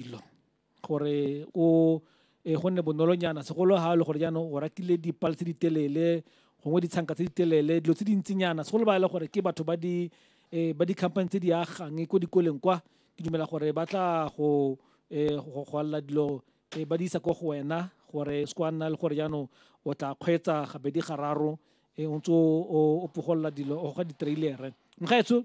dilo gore o e go nne bonolonyana segolo ga le gore jaanong o ratile dipale tse di telele gongwe ditshanka tse di telele dilo tse dintsinyana segolo ba e le gore ke batho ba di um ba di-company tse di agang ko dikoleng kwa ke dumela gore ba tla go um go alela dilo um ba di isa ko go wena gore se kwa nna le gore jaanong o tla kgweetsa gabedi gararo um o ntse o pogolola dilo o ga di-trailere mgaetsho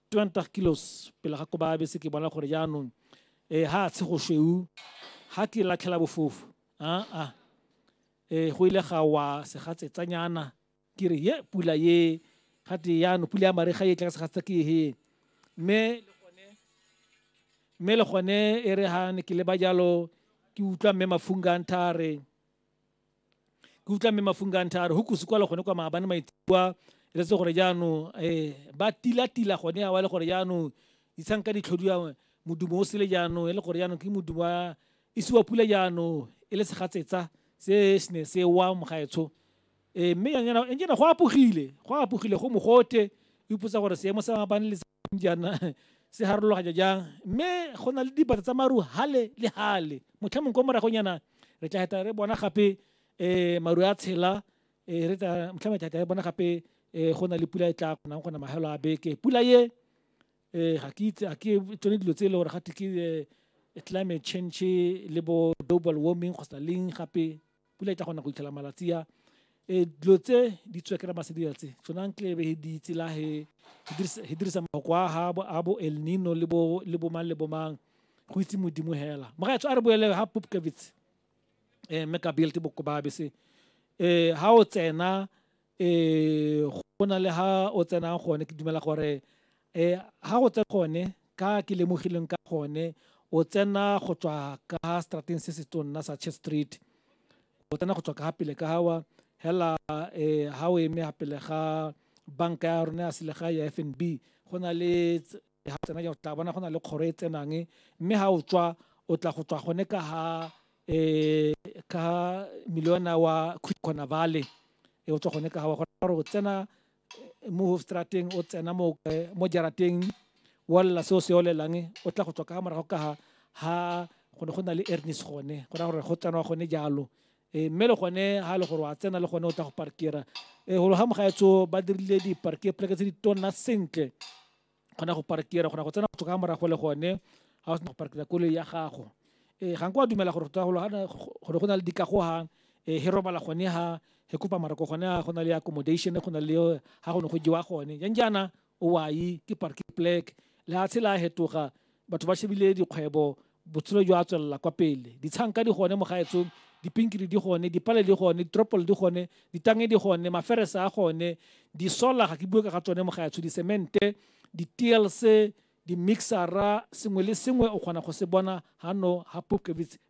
20 kilos pele ga koba bese ke bona gore jaanong eh ha tshe go shweu ha ke latlhela bofofu a a eh go ile ga wa se ga tsetsanyana ke re ye pula ye ga te jaanong pula ya mariga e tla ka se ga tsa ke he mme mme le gone e re ha ne ke le ba jalo ke utlwa mme mafunga nthare ke utlwa mme mafunga ntha a re go kusi kwala gone kwa maabane maitsibua e letse gore jaanong um ba tilatila gone awa le gore jaanong ditshang ka ditlhodiwa modumo o sele jaanong e le gore jaanong ke modumo wa isiwa pula jaanong e le segatsetsa se se ne se wa mogaetsho um mme ene go apogile go apogile go mogote o ipotsa gore seemo sa maabane le jaana se harologanya jang mme go na le dipata tsa maru hale le hale motlha mongwe ko moragonyana re tla heta re bona gape um maru a tshela um re tla motlha mongwe tla re bona gape um go na le pula e tla kgonang gona magelo a beke pula ye um ga ke itse a ke tsone dilo tse e le gore gate ke climate change le bo global warming kgotsa leng gape pula e tla kgona go itlhela malatsi a e dilo tse di tswekera masedira tse tsona ntlebe he di tsela he he dirisa mako a ha bo a bo el nino le bo le bo mang le bo mang go itse modimo hela mogaetsho a re boele ha popkevitse um eh, mme ka belte bokobabe se um eh, ha o tsena um go na le ha o tsenang gone ke dumela gore um ha go tsena gone ka ke lemogileng ka gone o tsena go tswa ka strateng se se tonna sa church street o tsena go tswa ka pele ka gawa hela um ha o eme ya pele ga banka ya rona ya selegae ya f n b go na le ga o tsena jaanong tla bona go na le kgoro e tsenang mme ga o tswa o tla go tswa gone ka ga um ka miliona wa khona vale e o tswa gone ka ga wa gore o tsena mo hofstrateng o tsena mo mo jarateng wa lela seo se olelang o tla go tswa ka morago ka ga ha go ne go na le ernis gone go raya gore go tsenwa gone jalo um mme le gone ga e le gore wa tsena le gone o tla go parkera um golo ga mogaetso ba dirile di-parke pleke tse di tonna sentle kgona go parkera kgona go tsena go ka morago le gone ga o sena go parkera koloi ya gago um ga nko wa dumela gore gore go na le dikagogang um he robala gone ha he kopa marako gone ha go na le accommodation go na le ha go ne go jewa gone jang jaana o wai ke parking plek lehatshe la hetoga batho ba shebile dikgwebo botshelo jwa tswelela kwa pele ditshanka di gone mo gaetsong dipinkiri di gone dipale di gone ditropole di gone ditange di gone maferese a gone disola ga ke bue ka ga tsone mo gaetsho disemente di-tlc di-mixera sengwe le sengwe o kgona go se bona hano ha popkevits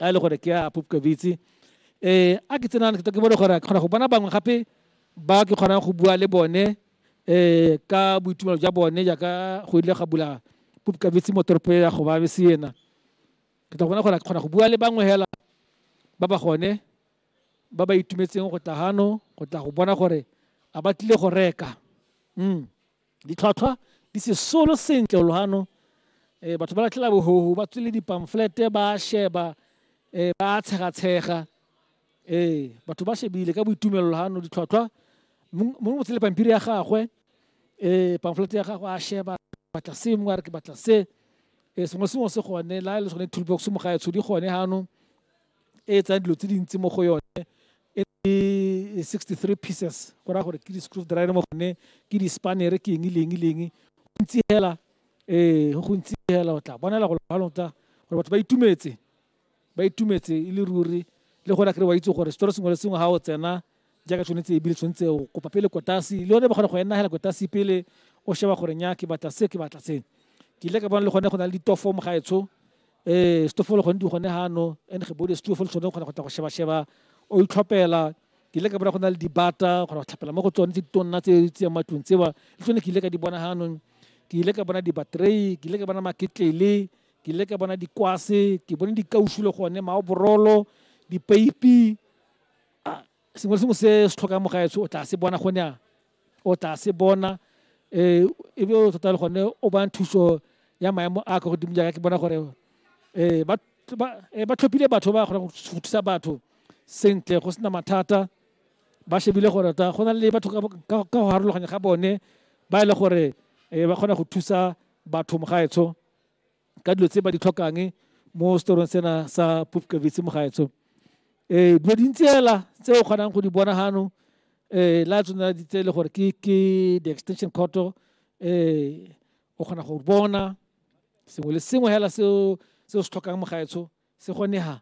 a e le gore ke a popkabitse um a ke tsenang ke bone gore kgona go bona bangwe gape ba ke kgonang go bua le bone um ka boitumelo jwa bone jaaka go ile ga bula popkabitse mo toropo ya go babe se ena ke tla bona gore ke kgona go bua le bangwe hela ba ba gone ba ba itumetseng go tla gano go tla go bona gore a ba tlile go reka um Ditlhwatlhwa di sesolo sentle o loano eh, batho ba latlhela bohoho ba tswile dipamflete ba sheba eh, ba tshegatshega eh, batho ba shebile ka boitumelo loano ditlhwatlhwa mongwe mo tsele pampiri ya gagwe eh, pamflete ya gagwe a sheba batla se mongwe a re ke batla se eh, sengwe sengwe se gone la e le sone toolbox mo gaetsho di gone ganong e e tsayang dilo tse dintsi mo go yone e le 63 pieces go raya gore ke di-screw driver mo gone ke di-spanere ke eng leng leng gontsi hela ee go gontsi hela o tla bonela go lota gore batho ba itumetse ba itumetse e le ruri le gona kry wa itse gore setori sengwe le sengwe ga o tsena jaaka tshwanetse ebile tshwanetse o kopa pele kotasi le yone ba kgona go enagela kotasi pele o sheba gore nya ke batla se ke batla se ke ile ka bona le gone go na le ditofo mo gaetsho um eh, setofo le gone di gone gano and ge bode setofo le tshwane o kgona go tla go sheba-sheba o itlhopela ke ile ka bona go na le dibata kgona go tlhapela mo go tsone tse ditonna tse tse matlong tseba le tsone ke ile ka di bona ganong ke ile ka bona dibatrei ke ile ka bona maketlele ke ile ka bona dikwase ke bone dikausu le gone maoborolo dipeipi a sengwe le sengwe se se tlhokang mo gaetsho o tla se bona gone a o tla se bona um e be o tota le gone o bang thuso ya maemo a ka godimo jaaka ke bona gore um ba tlhophile batho ba kgonang go thusa batho sentle go sena mathata ba shebile gore ta go na le batho ka go harologanya ga bone ba e le gore um ba kgona go thusa batho mo gaetsho ka dilo tse ba di tlhokang mo storong sena sa pupkavitse mogaetsho um eh, dilo dintsi fela tse o kgonang go di bona gano um eh, la tsona tse e le gore ke the extension courto um eh, o kgona go bona sengwe le sengwe fela seo se se tlhokang mogaetsho se kgonega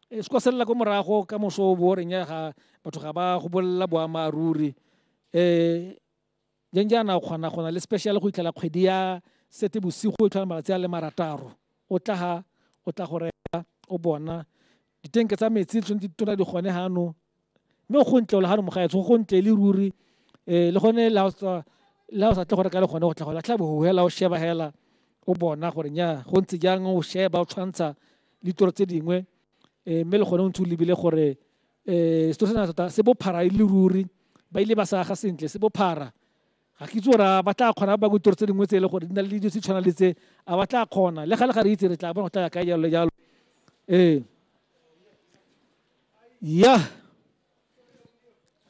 e se kwa selela ko morago ka moso o bo reng ya ga batho ga ba go bolelela boammaaruri um jang jaana o kgona go na le special go itlhela kgwedi ya sete bosigo e tlhola malatsi a le marataro o tla ha o tla go reka o bona ditenke tsa metsi tshwanetse di tona di gone gano mme go ntle le gano mogaetsho go ntle le ruri um le gone la o sa tle go reka le gone go tla go latlha bogo hela o sheba hela o bona gore nya go ntse jang o sheba o tshwantsha ditoro tse dingwe um mme le gone o ntse o lebile gore eh se sena tota se bophara e le ruri ba ile ba sa aga sentle se bophara ga ke itse gore ba tla kgona ba kutoro tse dingwe tse e le gore di na le dijo tse tshwana le tse a ba tla kgona le ga le ga re itse re tla bona go tla ya ka jalo jalo ee ya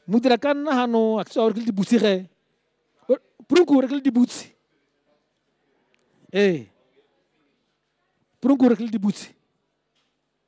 modira ka nna gano a ke gore ke le dibutse ge prunku gore ke le dibutse ee prunku gore ke le dibutse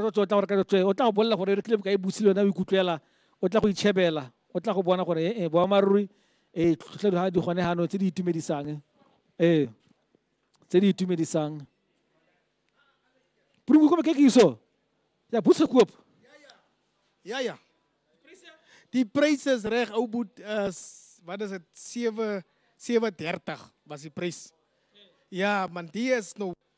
o tla gore ka tswe o tla go bolela gore re tlile boka e busile yona o ikutlwela o tla go itšhebela o tla go bona gore ee eh, boamaruri ee eh, tlhotlhedo ga di gone gano tse di itumedisang ee eh, tse di itumedisang purungu kome ke ke iso ya busa kuop ya ya die pryses reg ou boet uh, wat is dit 7 37 was die prys ja man die is nou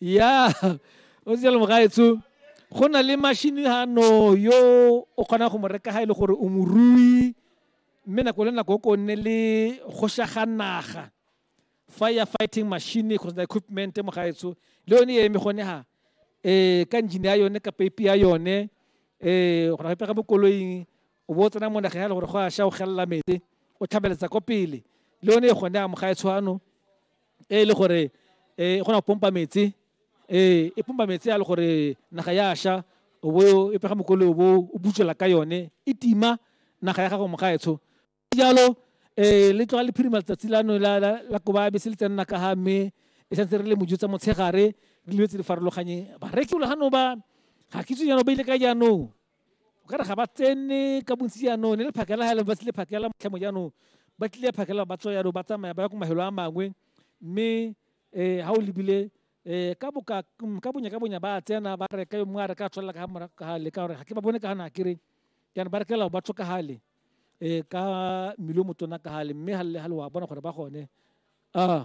ya o se le mogaetsho go na le mashini gano yo o kgonang go mo reka ga e le gore o morui mme nako le nako o ko nne le gošaga naga fire fighting machine kgotsa the equipment mo gaetsho le yone e eme gone ha eh ka engine ya yone ka peipi ya yone eh go na pega mo koloing o bo tsena mo naga ya le gore go a sha o gella mete o tlhabeletsa ko pele le yone e gone a mo gaetsho ano e le gore e kgona go pompa metsi ee e pompa metsi a le gore naga ya sha o bo e pega mokole o bo o butswela ka yone e tima naga ya gago mogaetsho jalo um le tloga le phirima letsatsi lano la koba be se le tsenna ka ga mme e santse re le mojo tsa motshegare le dilo tse di farologanyeng bareki o le gano ba ga ke itse jaanong ba ile ka jaanong o ka re ga ba tsene ka bontsi jaanong ne le phakela ga e leng ba tlile phakela motlhemo jaanong ba tlile phakela ba tswa jaanong ba tsamaya ba ya ko mahelo a mangwe mme um ga o lebile um ka boka ka bonya ka bonya ba tsena ba reka yo mongwe a reka a tswelela ka morago ka gale ka gore ga ke ba bone ka gana kere jaanong ba rekela ba tswa ka gale um ka mmele o motona ka gale mme ga le ga le wa bona gore ba gone a